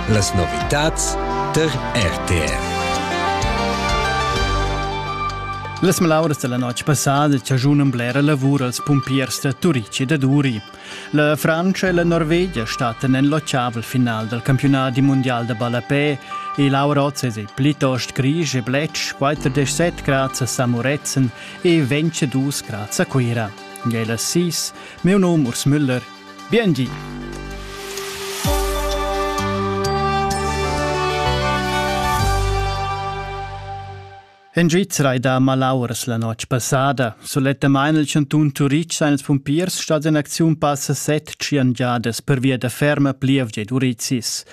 Las novitads tar RTR. Las malauras della notg passada chagiunan blera lavur als pumpiers da Turici e da Duri. La Francia e la Norvegia statten en l'occiavel final del campionat di mondial da ballapè e Laurozes e plitost Grisch e Bletsch 47 grads a Samuretzen e 22 grads a Cuira. Gela 6, meu nom Urs Müller Biengi! En Svizra ei da malauras la notg passada. Sulettamain il cantun Turitg sa ils pumpiers stat en acziun passa set giangiadas pervia da ferma plievgia ed urizis.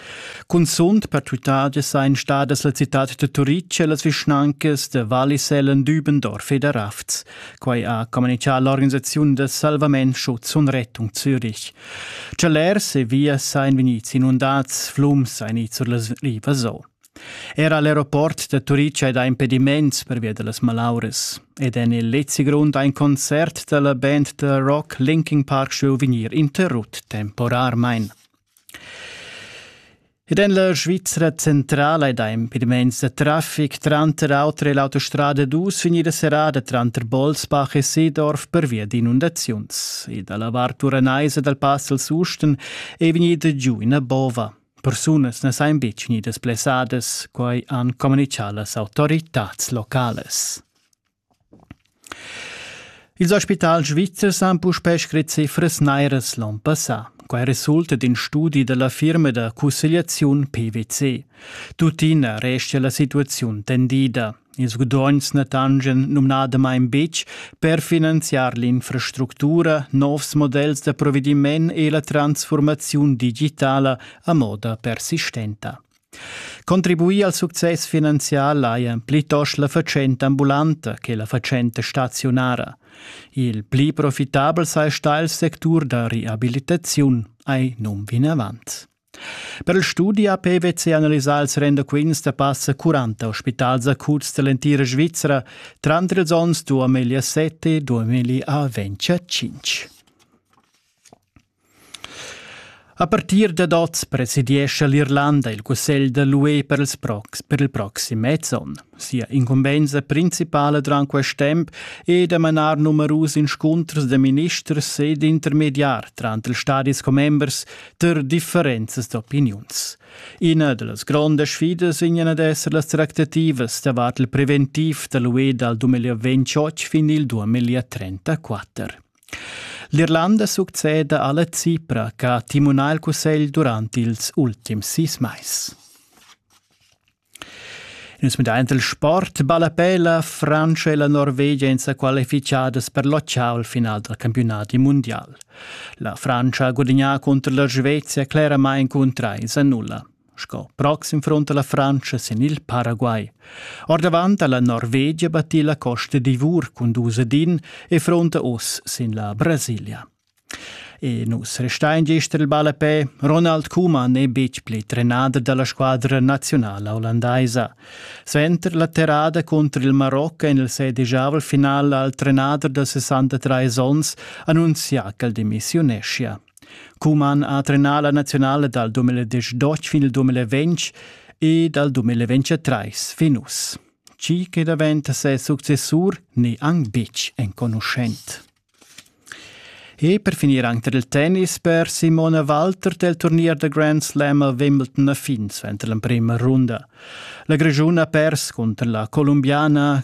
Cunzunt per tuttagia sein stadas la citad de Turitg e las vischnancas de Wallisellen, Dübendorf ed Rafts. Quai ha communitgà l'organisaziun da salvament Schutzun Rettung Zürich. Celers e vias ein vegnids inundads, flums ein ids sur las rivas o. Era l'aeroport da Turica è da impediments pervia da las malauras. Ed en il Lezi Grund ein Konzert della Band da Rock Linking Park Show vegnir interrut temporarmein. Ed en la Svizra centrala è da impediments da traffic tranter auter e l'autostrada dus vegnida serrada tranter Bolsbach e Seedorf pervia d'inundaziuns. E dalla vart uranaisa dal pass al Susten è vegnida giu ina bova. Persunas na sain betg vegnidas blessadas, quai han communichà las autoritads locales. Ils spitals svizzers han puspè scrit cifras nairas l'on passà. Quai resulta d'in studi da la firma da cussegliaziun PwC. Tuttina restia la situaziun tendida. Ils gudogns na tangen numnadamain betg per finanziar l'infrastructura, novs models da provediment e la transfurmaziun digitala a moda persistenta. Contribuir al success finanzial hajan plitost la fatschenta ambulanta che la fatschenta staziunara. Il pli profitabel saja il sectur da reabilitaziun, ei num vinavant. Per il studi ha PwC analisà ils rendaquints da passa 40 ospitals acuts dall'entira Svizra tranter ils onns 2007 e 2025. A partir dad oz presidiescha l'Irlanda il cussegl da l'UE per, ils prox per il proxim mez onn. Sia incumbensa principala durant quest temp è da manar numerus inscunters da ministers ed intermediar tranter ils stadis commembers per differenzas d'opiniuns. Ina da las grondas sfidas vegnan ad esser las tractativas davart il preventiv da l'UE dal 2028 fin il 2034. L'Irlanda succeda alla Cipra che ha timunà il cussegl durant ils ultims sis mais. Nus medaint il sport ballapè la Francia e la Norvegia en sa qualificadas per locciar il final dal campionat mundial. La Francia ha gudagnà contro la Svezia cleramain cun trais a nulla. Sco proxim front alla Frantscha sin il Paraguay. Ordavant alla Norvegia battì la Costa d'Ivor cun dus din e fronta oss sin la Brasilia. E nus restein gester il ball a pe. Ronald Koeman è betg pli trenader dalla squadra nazionala olandaisa. Sventer la terrada contro il Marocco en il sedigiavel final al trenader da 63 onns annunzia ch'el demissiuneschia. Cuman ha trenà la naziunala dal 2018 fin il 2020 e dal 2023 fin uss. Chi che daventa ses successur n'è anc betg enconuschent. E per finir anche il tennis per Simona Walter del turnier da Grand Slam a Wimbledon a fin suenter l'emprima runda. La Grigiun ha pers cunter la Colombiana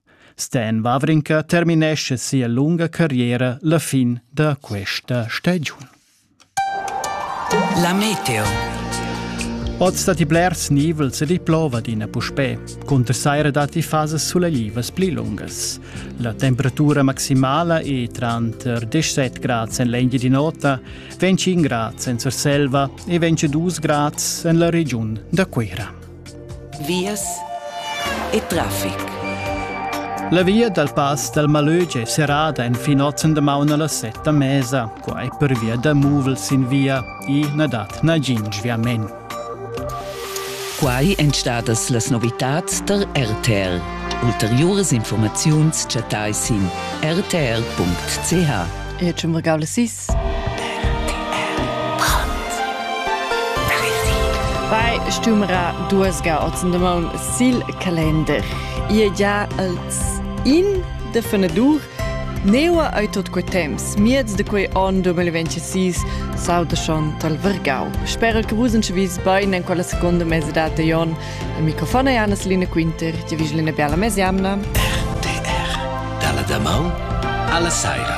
Sten Wawrinka terminescha sia lunga carriera la fin da questa stagiun. La meteo. Oz datti blers nivels ed i plova adina puspè. Cunter saira datti fasas sulaiivas pli lungas. La temperatura maximala è tranter 17 grads en l'Engia di nota, 25 grads en Surselva e 22 grads en la regiun da Cuira. Vias e traffic. La via dal pass dal Malög è serrada enfin ozen damaun a las set da mesa, quai pervia da muvels sin via. I na dat nagin sviament. Quai èn stadas las novitads tar RTL. Ulteriuras informaziuns chattai sin rtr.ch. E c'è Fai stumera duesga ozen de maun sil Kalender. Ie già als in de fenadur Neua ei tot quei temps, miez de quei on 2026, sauda schon tal Vergau. Spero che vus uns vis bein en quella seconda mese data Jon. Il microfon è Anna Selina Quinter, ti vis Lena Biala Mesiamna. RTR, dalla da mau alla saira.